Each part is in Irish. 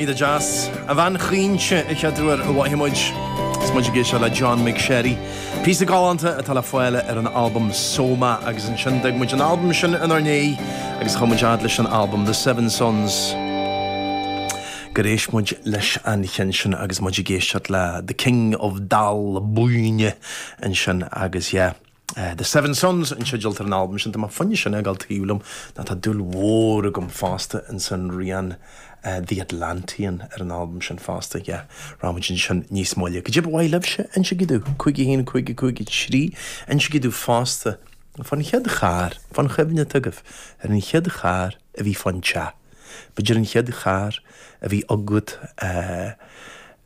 Aisling Gheal, A Bhean Chaointe, a chairde, ar maidin muid is muid ag éisteacht le John McSherry, píosa galánta atá le fáil ar an albam Soma agus ansin d'fhag muid an albam sin inár ndiaidh agus chuaigh muid fhad leis an albam The Seven Suns gur éist muid leis an cheann sin agus muid ag éisteacht le The King of Dal Buinne ansin agus yeah. The Seven Suns an teideal atá ar an albam sin. Tá m'fhoighne sin ag gabháil tríom nó tá dúil mhór agam fosta ins an rian The Atlantean ar an albam sin fosta, yeah. Rachaidh muid ansin níos moille. Caidé ba mhaith libhse, insigí dúinn, cúig a haon, cúig a cúig a trí, insigí dúinn fosta fán chéad charr, fán chuimhne atá agaibh ar an chéad charr a bhí fán teach. B'fhéidir an chéad charr a bhí agat,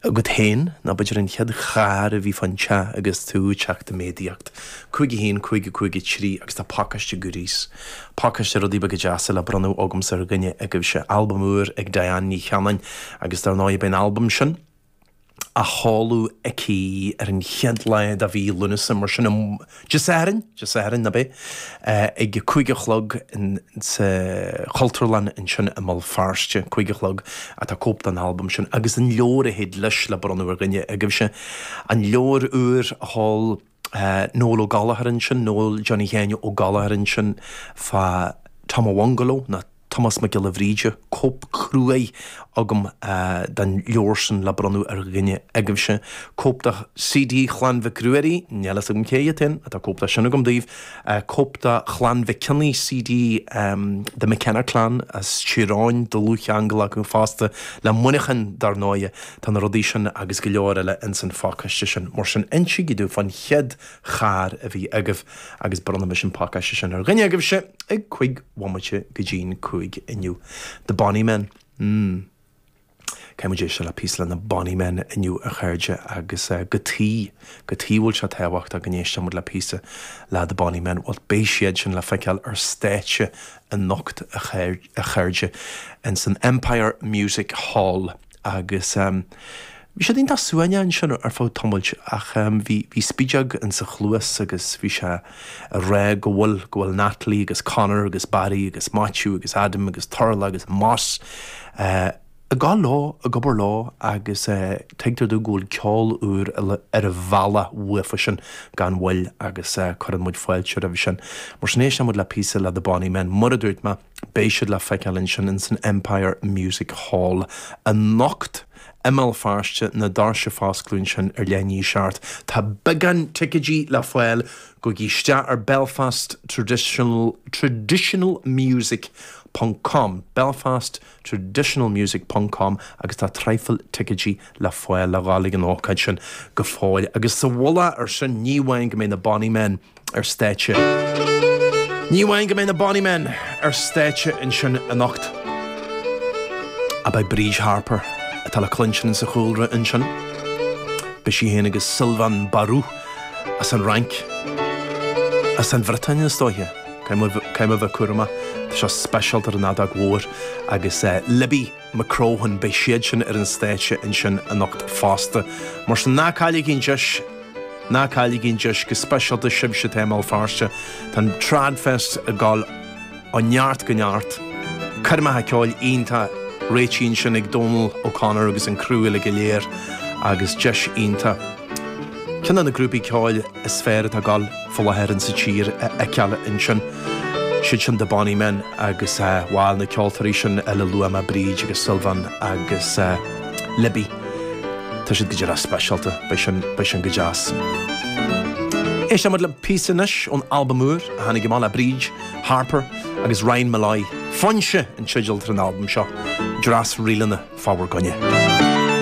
agat féin, nó b'fhéidir an chéad charr a bhí fán teach agus tú ag teacht i méadaíocht. 5 1 5 5 3 Agus tá pacáiste goodies, pacáiste rudaí beaga deasa le bronnadh agamsa ar dhuine agaibhse. Albam úr ag Diane Ní Cheannáin agus dár ndóigh beidh an albam sin, á sheoladh aici ar an chéad lá de mhí Lúnasa, mar sin, Dé Sathairn, Dé Sathairn, ab é? ag a cúig a chlog sa Chultúrlann ansin i mBéal Feirste, cúig a chlog, tá cóip den albam sin agus an leabhar a théid leis le bronnadh ar dhuine agaibhse. An leabhar úr a sheol. Noel Ó Gallchóir ansin, Noel Johnny Sheáin Ó Gallchóir ansin fa Tom an Bhungaló nó Tomás Mac Giolla Bhríde, cóip cruaidh agam den leabhar sin le bronnadh ar dhuine agaibhse, cóip de CD Chlann Mhic Ruairí, níl a fhios agam cé hiad féin, tá cóip de sin agam daoibh, cóip de Chlann Mhic Cionnaith, CD The McKenna Clan as Tír Eoghain, dlúthcheangal acu fosta le Muineachán dar ndóighe. Tá na rudaí sin agus go leor eile ins an phacáiste sin. Mar sin, insigí domh fán chéad charr a bhí agaibh agus bronnfaidh mise an pacáiste sin ar dhuine agaibhse ag cúig bhomaite go dtí'n cúig inniu. The Bonny Men. mm. Caithfidh muid éisteacht le píosa le na Bonny Men inniu a chairde agus cad tuige, cad tuige a bhfuil sé tábhachtach go n-éistfidh muid le píosa le The Bonny Men. Bhuel, beidh siad sin le feiceáil ar stáitse anocht a chairde, ins an Empire Music Hall. Agus bhí siad iontach suaimhneach ansin ar feadh tamailt ach bhí spideog ins an chluas agus bhí sé ag rá go bhfuil, go bhfuil Natalie agus Conor agus Barry agus Maitiú agus Adam agus Turlough agus Moss ag gabháil leo, ag obair leo agus tuigtear domh go bhfuil ceol úr ar an bhealach uathusan gan mhoill agus cuireann muid fáilte roimhe sin. Mar sin éisteann muid le píosa le The Bonny Men, Mura dúirt mé. Beidh siad le feiceáil ansin ins an Empire Music Hall anocht i mBéal Feirste na doirse ag foscladh ansin ar leath i ndiaidh a seacht. Tá beagán ticéidí le fáil gabhaigí isteach ar Belfast Tradi Traditional Music ponc com Belfast Traditional Music ponc com agus tá traidhfil ticéidí le fáil le dhul ag an ócáid sin go fóill agus sa mhullach air sin ní amháin go mbeidh na Bonny Men ar stáitse. Ní amháin go mbeidh na Bonny Men ar stáitse ansin anocht, ach beidh Bríd Harper, atá le cluinstin sa chúlra, ansin. Beidh sí féin agus Sylvain Barou, as an Fhrainc, as an Bhriotáin is dóiche, caithfidh mé a bheith cúramach anseo, speisialta ar an fheadóg mhór, agus Libby, McCrohan, beidh siadsan ar an stáitse ansin anocht fosta. Mar sin, ná cailligí an deis, go speisialta sibhse atá i mBéal Feirste, tá an TradFest ag dul ó neart go neart, coirmeacha ceoil iontach réitithe ansin ag Dónal O'Connor agus an criú uilig go léir agus deis iontach. ceann de na grúpaí ceoil is fearr atá ag dul fá láthair in sa tír a fheiceáil ansin. Siad sin The Bonny Men agus bhal, na ceoltóirí sin eile a luaigh mé, Bríd agus Sylvain agus Libby, tá siad go díreach speisialta, beidh sin, beidh sin go deas. Éistfidh muid le píosa anois ón albam úr a tháinig amach le Bríd Harper agus Ryan Molloy, Foinse an teideal atá ar an albam seo, dreas ríleanna fá bhur gcoinne.